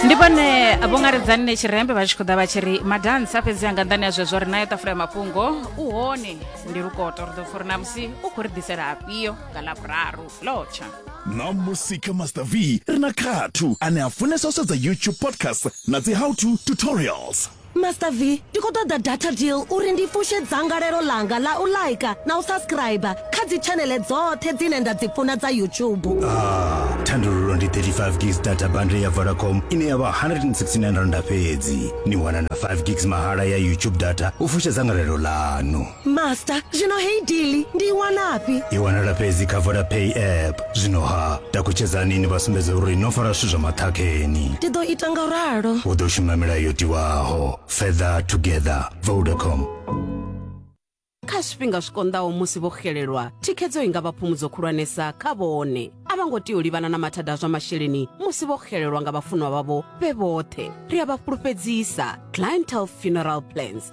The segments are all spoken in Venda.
ndi vhone vho ngaredzani ne tshirembe vha tshi khou ḓa vha tshi ri madansa fhedzi anga nḓani ya zwezwo ri nayo ṱafula ya mafhungo u hone ndi lukoto ri ḓo pfha uri na musi u khou ri ḓisela afhio nga ḽavhuraru lotsha na musika master v ri na khathu ane a funesa u sedza youtube podcast na dzi how to tutorials Master V, ndi khou ṱoḓa data deal uri ndi fushe dzangalelo ḽanga ḽa u like na u subscriber kha dzi tshaneḽe dzoṱhe dzine nda dzi funa dza YouTube. Ah, thandululo ndi 35 gigs data bundle ya Vodacom ine ya vha 169 rand fhedzi. Ni wana na 5 gigs mahala ya YouTube data u fusha dzangalelo ḽanu. master zwino heyi dili ndi i wanafhi i wanala fhedzi kha vodapay app zwino ha takutshedzani ni vha sumbedze uri no fara zwithu zwa maṱhakheni ndi ḓo ita nga ralo u ḓo shuma milayo yo tiwaho further together vodacom kha zwifhinga zwi konḓaho musi vho xelelwa thikhedzo i nga vha phumudzo khulwanesa kha vhone a vha ngo tea u livhana na mathada a zwa masheleni musi vho xelelwa nga vhafunwa vhavho vhe vhoṱhe ri a vha fhulufhedzisa clientele funeral plans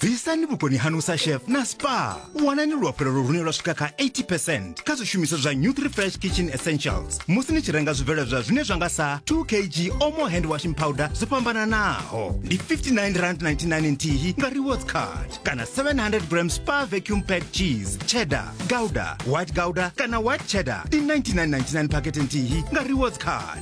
bvisani vhukoni hanu sa chef na spa wanani luafhulelo lune lwa swika kha 80 percent kha zwishumiswa zwa new three fresh kitchen essentials musi ni tshi renga zwibveledzwa zwine zwa nga sa 2 kg omo hand washing powder zwo fhambananaho ndi 59 rand 99 nthihi nga rewards card kana 700 gram spa vacuum pack cheese cheddar gouda white gouda kana white cheddar ndi 99.99 pakete nthihi nga rewards card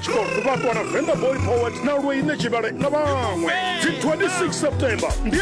Tshikolo Tuvhakwa na Venḓa Boy Poet na Lweine Tshivhale na vhaṅwe. Dzi 26 September ndi